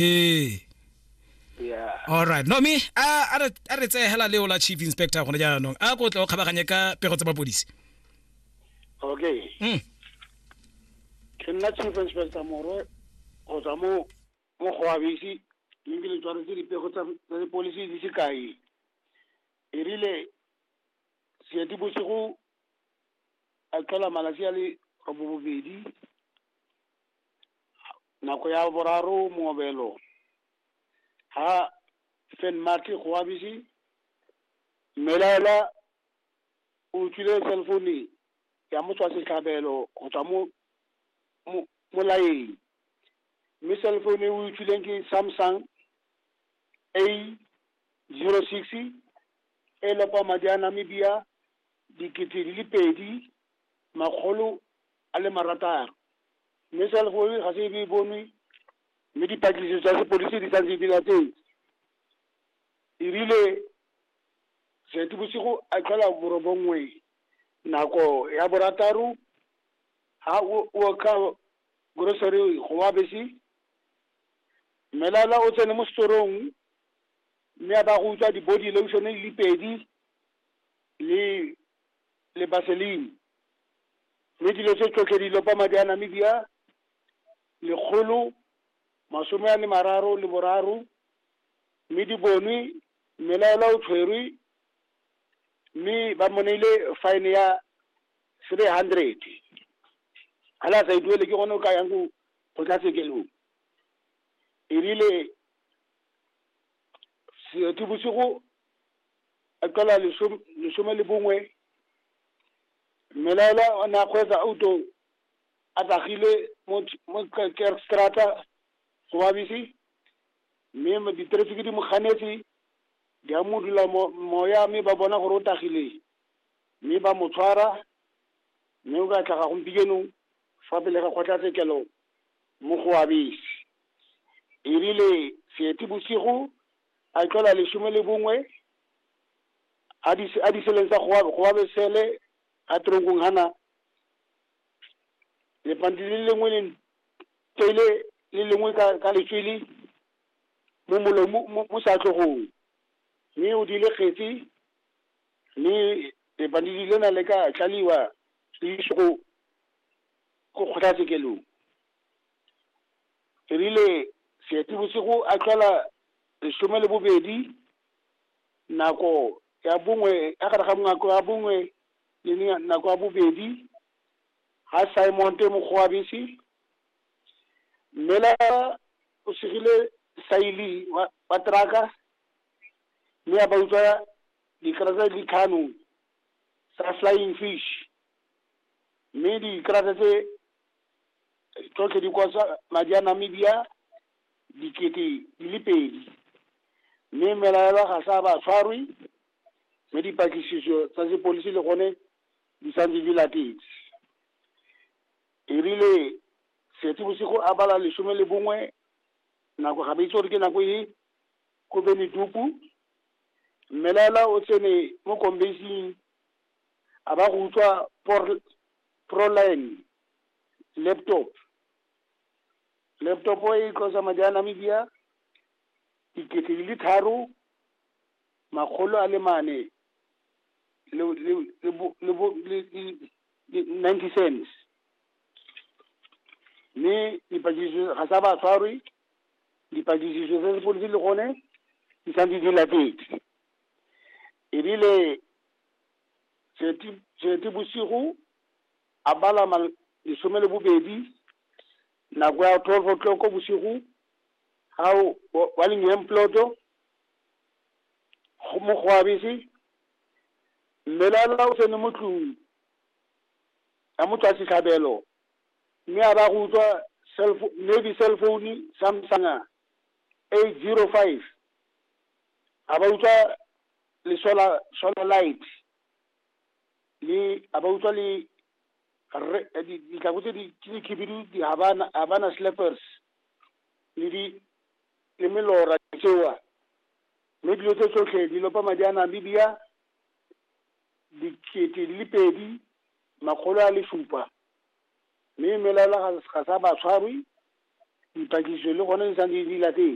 ee alright no me a re tseye hela leo la chief inspector gone jaanong a ko tle o kgabaganye ka pego tsa mapodisi okay mm. ke nna chief inspector morwe go tswa mo mo go abisi mme le tshwaretse dipego tsa dipolisi di sekai e rile seeti bosigo a tlhola malatsi a le robobedi nako ya boraro mongobelo ha St. Marty Goabisi mmelaela o utlwile cell phone ya motswa setlhabelo go tswa mo mo- molaeng mme cell phone e o utlwileng ke Samsung A zero six e lopa madi a Namibia dikete di le pedi makgolo a le marataro. Mme cell phone ga se e be e bonwe, mme dipatlisiso tsa sepodisi di santse di latetse. E rile Seetebosigo a tlhola borobongwe nako ya borataro, ha o o ka grocery go wa bese, Mmelala o tsene mo setorong mme a ba go utswa di-body lotion di le pedi le le baselini. Mme dilo tse tsotlhe di lopa madi a Namibia lekgolo masome a le mararo le boraro mme di bonwe mmelaelwa o tshwerwe mme ba mo neile fine ya three hundred ga la sa e duele ke gone o ka yang go tla sekelong erile seetebosigo a tlhola lesome lesome le bongwe mmelaela o ne a kgweetsa auto a tsagile mo Ch- mo Ker- kerkstrata go babisi mme ma- diterefiki di mo ganetse di a mo dula mo- moya mme ba bona gore o tagile mme ba mo tshwara mme o ka tlhaga gompieno fa pele ga kgotlatshekelo mo go abese e rile seetebosigo a e tlhola lesome le bongwe a di a di seleng sa go go ba sele a trongong hana le pandi le lengwe le tele le lengwe ka ka letswele mo molomo mo sa tlogong mme o di le kgetsi mme le pandi di lena le ka tlaliwa le go go kgothatsekelong e rile seetebosigo a tlhola lesome le bobedi nako ya bongwe ya gare ga nako ya bongwe le ne- nako ya bobedi ga simon te mokgwabisi mme la o segile saili wa wa teraka mme a ba utswa dikarata di tlhano tsa flying fish mme dikarata tse tsotlhe di kosa madi a Namibia dikete di le pedi mme melaelwa ga sa ba tshwarwe mme dipatlisiso tsa sepodisi le gone di santse di latetse erile setse bosigo a bala lesome le bongwe nako ga ba itse gore ke nako e ko beneduku mmelaela o tsene mo kombasing a ba go utswa proline laptop laptop e costa madi a namibia dikete di le tharo makgolo a le mane ninety cents mme dipatlisiso ga sa ba tshwarwe dipatlisiso tsa sepodisi le gone di santse di latetse ebile Seetebosigo a bala ma lesome le bobedi nako ya twelve o'clock bosigo ga o wa Lingian Ploto go mo go a bese mmelala o tsene mo tlung ya mo tswa setlhabelo mme a ba go utlwa cell maybe cell phone Samsung eight zero five a ba utlwa le solar solar light le a ba utlwa le re di ditlhako tse di tse di khibidu di habana habana slippers le di le melora tsewa mme dilo tse tsotlhe di lopa madi a namibia dikete di le pedi makgolo a le supa mme melaela ga sa ba tshwarwe dipatlisiso le gone di sa di di latele